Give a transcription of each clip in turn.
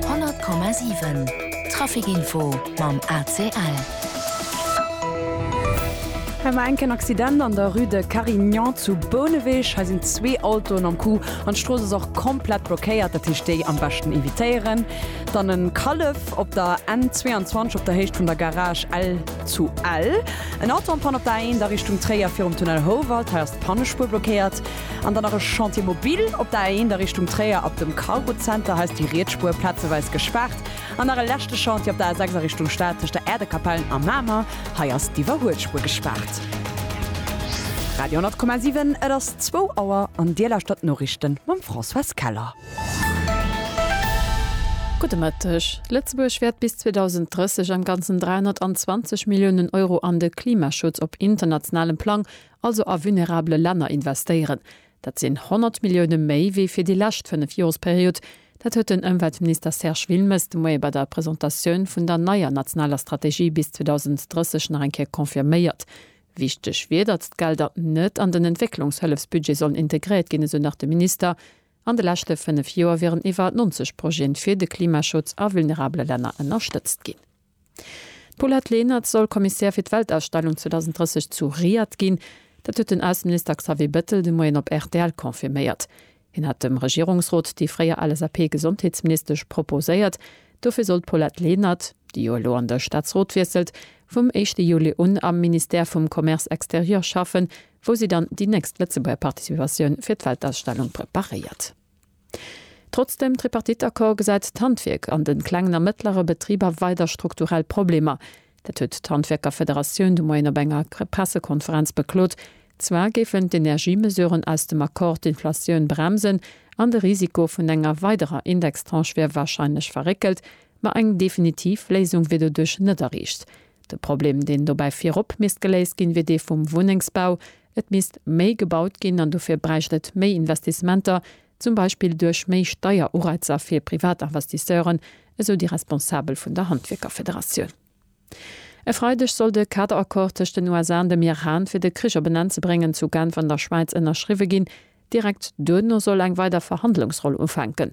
100,7 Traficinfo mam ACL. Hei war enk en Accident an der Rue de Carignan zu Bouneweg. Hei sinn zwee Autoen am Coup an d'Strooss ass och komplett blockéiert. Dat heescht déi am beschten evitéieren. Dann e Kallef op der N 22 op der Héicht vun der Garage Ell zu Ell. En Auto am Panne op der A1 a Richtung Tréier virum Tunnel Houwald. Hei ass d'Pannespuer blockéiert. An dann nach e Chantier mobile op der A1 a Richtung Tréier ab dem Cargo Center. Hei ass déi riets Spuer plazeweis gespaart. An nach e leschte Chantier op der A6 a Richtung Stad tëscht der Äerdekapell a Mamer. Hei ass d'Iwwerhuelspur gespaart. Radio 10,7, et ass zwou Auer an Dir lauschtert d'Noriichte mam Françoise Keller. Gudde Mëtteg. Lëtzebuerg wäert bis 2030 am Ganzen 320 Milliounen Euro an de Klimaschutz op internationalem Plang also a vulnerabele Länner investéieren. Dat sinn 100 Millioune méi wéi fir déi lescht fënnef Joresperiod. Dat huet den Ëmweltminister Serge Wilmes de Moie bei der Presentatioun vun der neier nationaler Strategie bis 2030 nach eng Kéier confirméiert. Wichteg wier, datt d'Gelder net an den Entwécklungshëllefsbudget sollen integréiert ginn, esou nach de Minister. An de leschte fënnef Joer wieren iwwer 90 Projeten fir de Klimaschutz a vulnerabele Länner ënnerstëtzt ginn. D'Paulette Lenert soll Kommissär fir d'Weltausstellung 2030 zu Riad ginn. Dat huet den Ausseminister Xavier Bettel de Moien op rtl confirméiert. Hien hat dem Regierungsrot déi fréier LSAP-Gesondheetsministesch proposéiert. Dofir soll d'Paulette Lenert, déi jo elo an de Staatsrot wiesselt, vum éischte Juli un am Ministère vum Commerce extérieur schaffen, wou si dann déi nächst Lëtzebuerger Participatioun fir d'Weltausstellung preparéiert. Trotz dem Tripartite-Accord gesäit d'Handwierk an de klengen a mëttlere Betriber weider strukturell Problemer. Dat huet d'Handwierkerfederatioun de Moien op enger Pressekonferenz beklot. Zwar géifen d'Energiemesuren aus dem Accord d'Inflatioun bremsen an de Risiko vun enger weiderer Indextranche wier warscheinlech verréckelt, ma eng definitiv Léisung wier doduerch net erreecht. De Problem, deen dobäi virop misst geléist ginn, wier dee vum Wunnengsbau, Et misst méi gebaut ginn an dofir bräicht et méi Investissementer, zum Beispill duerch méi Steierureizer fir Privatinvestisseuren, esou déi Responsabel vun der Handwierkerfederatioun. E Freideg soll de Kaderaccord tëscht den USA an dem Iran, fir de Krich op en Enn ze bréngen, zu Genf an der Schwäiz ënnerschriwwe ginn. Direkt duerno soll eng weider Verhandlungsronn ufänken.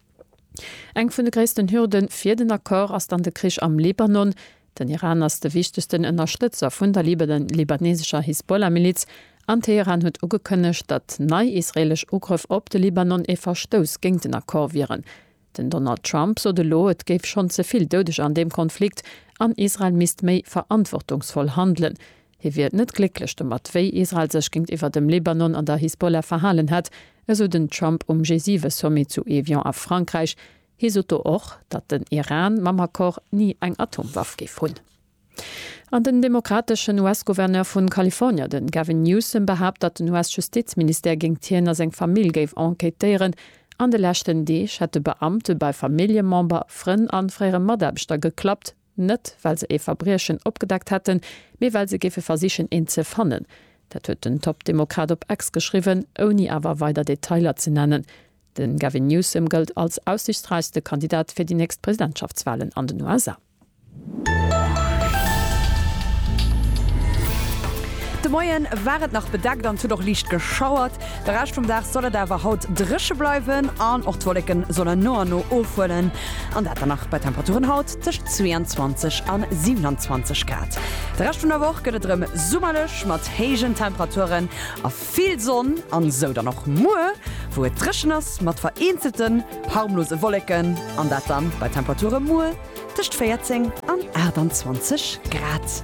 Eng vun de gréissten Hürde fir den Accord ass dann de Krich am Libanon. Den Iran ass de wichtegsten Ënnerstëtzer vun der libanesescher Hisbollah-Miliz, an Teheran huet ugekënnegt, datt nei israeelesch Ugrëff op de Libanon ee Verstouss géint den Accord wieren. Den Donald Trump sot elo, et géif schonn ze vill Doudeger an deem Konflikt an Israel misst méi verantwortungsvoll handelen. Hie wier net glécklech domat, wéi Israel sech géintiwwer dem Libanon an der Hisbollah verhalen hätt, esou den Trump um G7-Sommet zu Evian a Frankräich. Hie sot do och, datt den Iran mam Accord ni eng Atomwaff géif hunn. An den demokrateschen US-Gouverneur vu Kalifornier, de Gavin Newsom, behaapt, datt den US-Justizministère géingt hien a seng Famill géif enquêtéieren. An de leschten Deeg hätte Beamte bei Familljemember, Frënn a fréiere Mataarbechter geklappt. Net well se ee Verbriechen opgedeckt hätten, mee well se géife versichen eent ze fannen. Dat huet den Top-Demokrat op X geschriwwen, ouni awer weider Detailer ze nennen. De Gavin Newsom gëllt als aussiichtsräichste Kandidat fir déi nächst Presidentschaftswalen an den USA. De Moien war et nach bedeckt an et huet och liicht geschauert. De Rescht vum Dag soll et awer haut dréche bleiwen an och d'Wolleken sollen no an no ofhuelen an dat dann nach bei Temperaturen haut. Tëscht 22 an 27 Grad. De Rescht vun der Woch gëtt et erëm summerlech mat héijen Temperaturen a vill Sonn an esou dann och muer, wou et dréchen ass mat vereenzelten harmlose Wolleken an dat dann bei Temperature muer tëscht 14 an 28 Grad.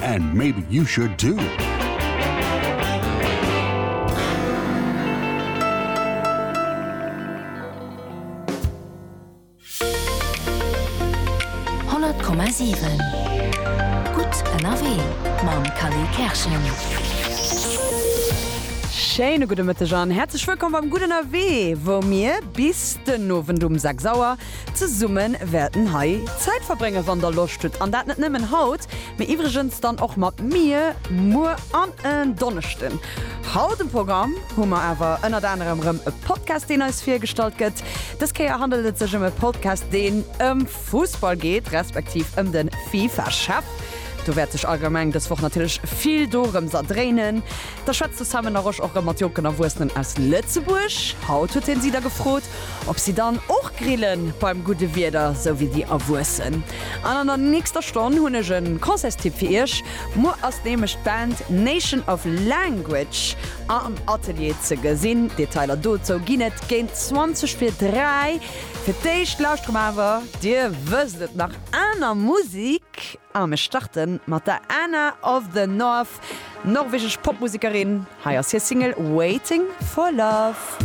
And maybe you should too! Schéine gudde Mëtteg an häerzlech wëllkomm beim Gudden Ewee, wou mir bis den Owend um 6 Auer Zesumme wäerten hei Zäit verbréngen, wann der Loscht hutt, an dat net nëmmen haut, mee iwwregens dann och mat mir, muer an en Donneschden. Haut um Programm hu mer awer ënnert anerem rëm e Podcast, deen eis virgestallt gëtt. Dës Kéier handelt et sech ëm e Podcast, deen ëm Fussball geet, respektiv ëm de FIFA-Chef. Do wäert sech allgemeng dës Woch natierlech vill dorëms erdréinen. Da schwätzt de Sam Enarosch och rëm mat jonken Erwuessenen aus Lëtzebuerg. Haut huet hien si da gefrot, ob si dann och grillen, beim gudde Wieder, sou wéi déi Erwuessen. An an der nächster Stonn hunn ech e Concertstipp fir iech. Muer ass nämlech d'Band Nation of Language am Atelier ze gesinn. Detailer dozou ginn et géint 20 vir 3. Fir d'éischt lauschteren mer awer, dir wësst et, nach aner Musik. A mir starte mat der Anna of the North, norwegesch Popmusekerin. Hei ass hir Single Waiting for Love.